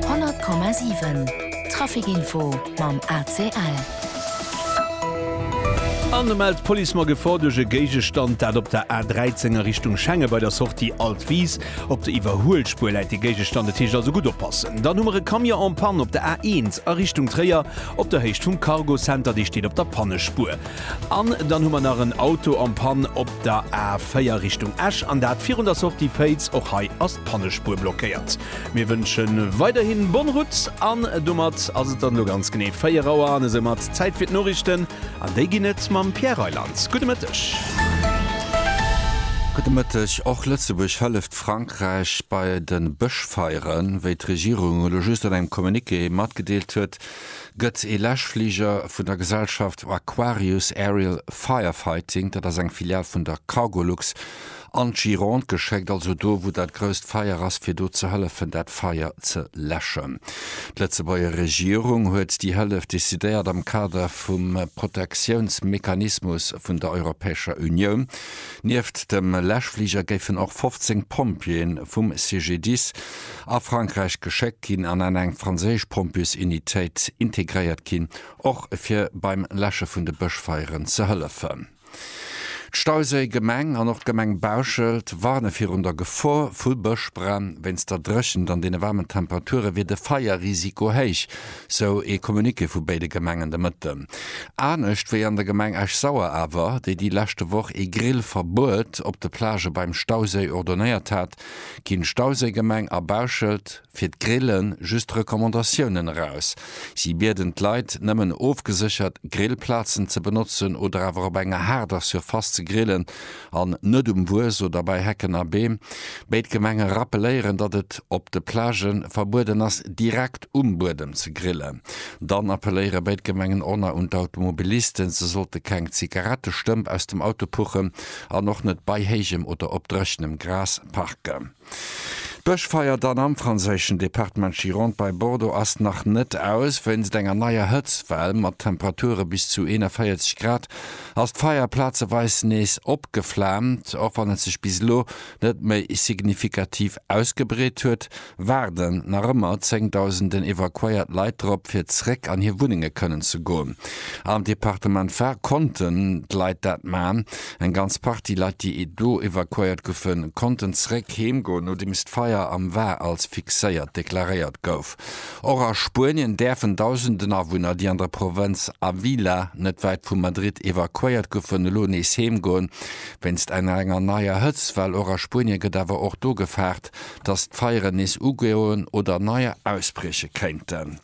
100,7 Trafic Info mam ACL. An da mellt d'Police mer Gefor duerch e Géigestand, dat op der A13 a Richtung Schengen bei der Sortie Alt Wiis. Op der Iwwerhuelspuer läit de Géigestand, et heescht also gutt oppassen. Dann hu mer e Camion en panne op der A1 a Richtung Tréier op der Héicht vum Cargo Center, dee steet op der Pannespuer. An dann hu mer nach en Auto en Panne op der A4 Richtung Esch, an dat virun der Sortie Féiz. Och hei ass d'Pannespuer blockéiert. Mir wënsche weiderhin bonne route an domat ass et dann elo ganz genee 4 Auer an esou mat Zäit fir d'Noriichten an déi ginn et mam Pierre Reyland. Gudde Mëtteg. Gudde Mëtteg. Och Lëtzebuerg hëlleft Frankräich bei de Bëschfeieren, wéi d'Regierung elo just an engem Communiqué matgedeelt huet. gëtt e Läschfliger vun der Gesellschaft Aquarius Aerial Firefighting, dat ass eng Filial vun der Cargolux, an d'Gironde geschéckt, also do, wou dat grousst Feier ass, fir do ze hëllefen, dat Feier ze läschen. D'Lëtzebuerger Regierung huet déi Hëllef decidéiert am Kader vum Protektiounsmechanismus vun der Europäescher Unioun. Nieft dem Läschfliger géifen och 15 Pompjeeën vum CGDIS a Frankräich geschéckt ginn an an eng franséisch Pompjeesunitéit integréiert ginn, och fir beim Läsche vun de Bëschfeieren ze hëllefen. D'Stauséi Gemeng an och d'Gemeng Bauschelt warne virun der Gefor vu Bëschbränn. Wéinst der Dréchent an deene waarmen Temperature wier de Feierrisiko héich, sou ee Communiqué vu béide Gemengen de Mëtten. Anescht wéi an der Gemeng Esch-Sauer awer, déi déi leschte Woch ee Grillverbuet op de Plagë beim Stauséi ordonéiert hat, ginn d'Stauséigemeng a Bauschelt fir d'Grille just Recommandatiounen eraus. Si bieden d'Leit, nëmmen ofgeséchert Grillplazen ze benotzen oder awer op enger haarder Surface ze grillen an net um Wues oder bei Hecken a Beem. Béid Gemenge rappeléieren, datt et op de Plagë verbueden ass, direkt um Buedem ze grillen. Dann appelléiere béid Gemengen och nach un d'Automobilisten, se sollte keng Zigarettestëmp aus dem Auto puchen. an och net bei héijem oder op dréchenem Gras parken. D'Bëschfeier dann am franséischen Departement Gironde bei Bordeaux ass nach net aus. Wéinst enger neier Hëtztwell mat Temperature bis zu 41 Grad ass d'Feier plazeweis nees opgeflaamt. Och wann et sech bis elo net méi signifikativ ausgebreet huet, waarden nach ëmmer zéngdausenden evakuéiert Leit drop fir zréck an hir Wunnenge kënnen ze goen. Am Departement Var konnten d'Leit dat man. Eng ganz Partie Leit déi do evakuéiert goufe konnten zréck heem goen nodeems d'Feier am Var als fixéiert deklaréiert gouf. Och a Spuenien däerfen dausenden Awunner déi an der Provënz Avila net wäit vu Madrid evakuéiert goufen elo nees heem goen wéinst enger enger neier Hëtztwell. Och a Spuenie gëtt awer och do gefaart dass d'Feieren nees ugoen oder neier ausbrieche kéinten.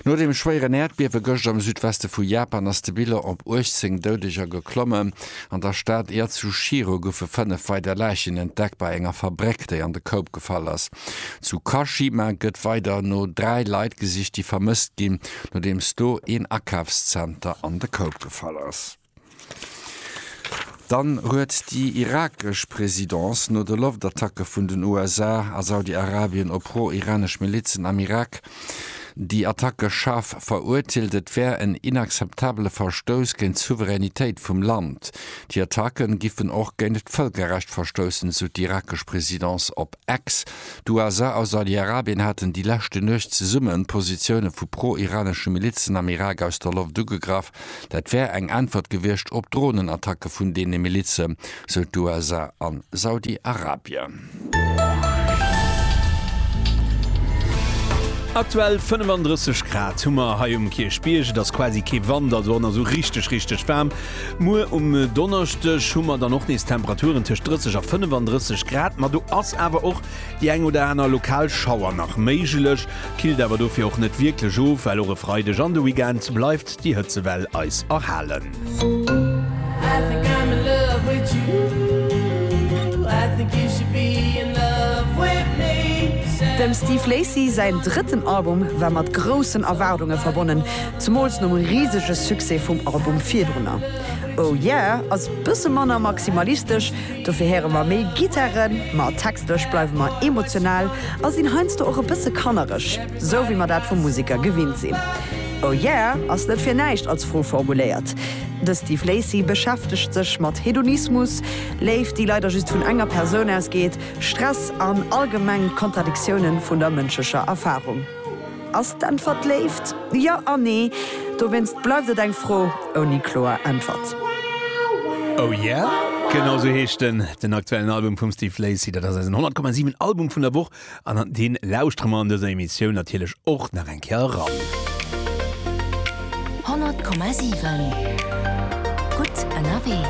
No dem schwéieren Äerdbiewe gëscht am Südweste vu Japan ass de Bilan op 18 Doudeger geklommen. An der Stad Yatsushiro goufe fënnef weider Läichen entdeckt bei enger Fabréck, déi an de Koup gefall ass. Zu Kashima gëtt weider no dräi Leit gesicht, déi vermësst ginn, nodeems do een Akafszenter an de Koup gefall ass. Dann huet déi irakesch Presidence no de Loftattacke vun den USA a Saudi-Arabien op pro-iranesch Milizen am Irak déi Attacke schaarf verurteelt. Et wär en inakzeptabele Verstouss géint d'Souveränitéit vum Land. Déi Attacke giffen och géint d'Vëlkerrecht verstoussen, sou d'irakesch Presidence op X. D'USA a Saudi-Arabien haten déi leschte Nuecht zesumme Positioune vu pro-iranesche Milizen am Irak aus der Loft ugegraff. Dat wär eng Äntwert gewiescht op d'Dronenattacke vun deene Milize, sou d'USA a Saudi-Arabien. Aktuell 35 Grad hu mer hei um Kierchbierg. Et ass quasi kee Wand, also an esou richteg richteg waarm. Muer um Donneschdeg hu mer dann och nees Temperaturen tëscht 30 a 35 Grad, ma do ass awer och Déi eng oder aner lokal Schauer nach méiglech, killt awer dofir och net wierklech of, well och e Freideg an de Weekend bleift déi Hëtzewell eis erhalen. Dem Steve Lacy säin drëtten Album war mat groussen Erwaardunge verbonnen, zemools nom risege Succès vum Album virdrunner. Oh Yeah ass bësse manner maximalistesch, Dofir héiere mer méi Gittaren, ma textlech bleiwe mer emotional a sinn heiansdo och e bësse kannereg, sou wéi mer dat vum Museker gewinnt sinn. Oh yeah ass net fir näischt als Fro formuléiert. De Steve Lacy beschäftegt sech mat Hedonismus, Léift, déi leider just vun enger Persoun ausgeet, Stress an allgemeng d'Kontradiktiounen vun der mënschlecher Erfarung. Ass d'Äntwert Léift? Jo a nee. Dowéinst bleift et eng Fro ouni kloer Äntwert. Oh yeah? Genau sou heescht en, den aktuellen Album vum Steve Lacy. Dat ass eisen 100 Komma 7 Album vun der Woch an an dee lauschtere mer an dëser Emissioun natierlech och nach eng Kéier eran. 100 Komma 7 Gutt ënnerwee.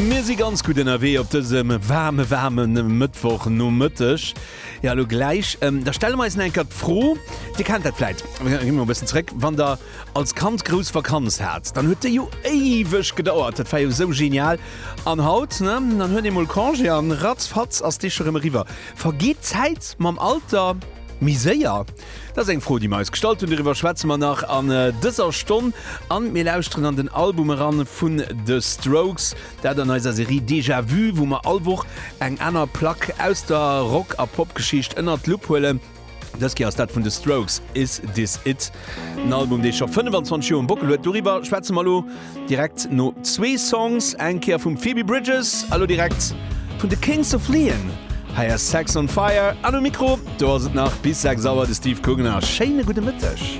Mir si ganz gutt ënnerwee op dësem waarme, waarme Mëttwochnomëtteg. Jo, elo gläich, da stelle mer eis nach eng Kéier d'Fro, Dir kennt dat vläit, ech gi mol e bëssen zréck, wann Der als Kand grouss Vakanz hat, dann huet déi jo éiweg gedauert, dat war jo esou genial. An haut, ne, dann huet ee mol Congé an ratzfatz ass déi scho rëm eriwwer. Vergeet d'Zäit mam Alter méi séier? Dat ass eng Fro, déi mir eis gestallt hunn. Doriwwer schwätze mer nach an dëser Stonn. A mir lauschteren an den Album eran vun The Strokes. Dat an eiser Serie Déjà Vu, wou mer all Woch eng aner Plack aus der Rock a Popgeschicht ënnert d'Lupp huelen. Dës Kéier ass dat vun The Strokes Is This It? En Album, dee scho 25 Joer um Bockel huet. Doriwwer schwätze mer elo. Direkt no zwee Songs, eng Kéier vum Phoebe Bridgers a lo direkt vun de Kings of Leon, hei ass Sex on Fire an um Mikro do ass et nach bis 6 Auer de Steve Kungen a schéine gudde Mëtteg.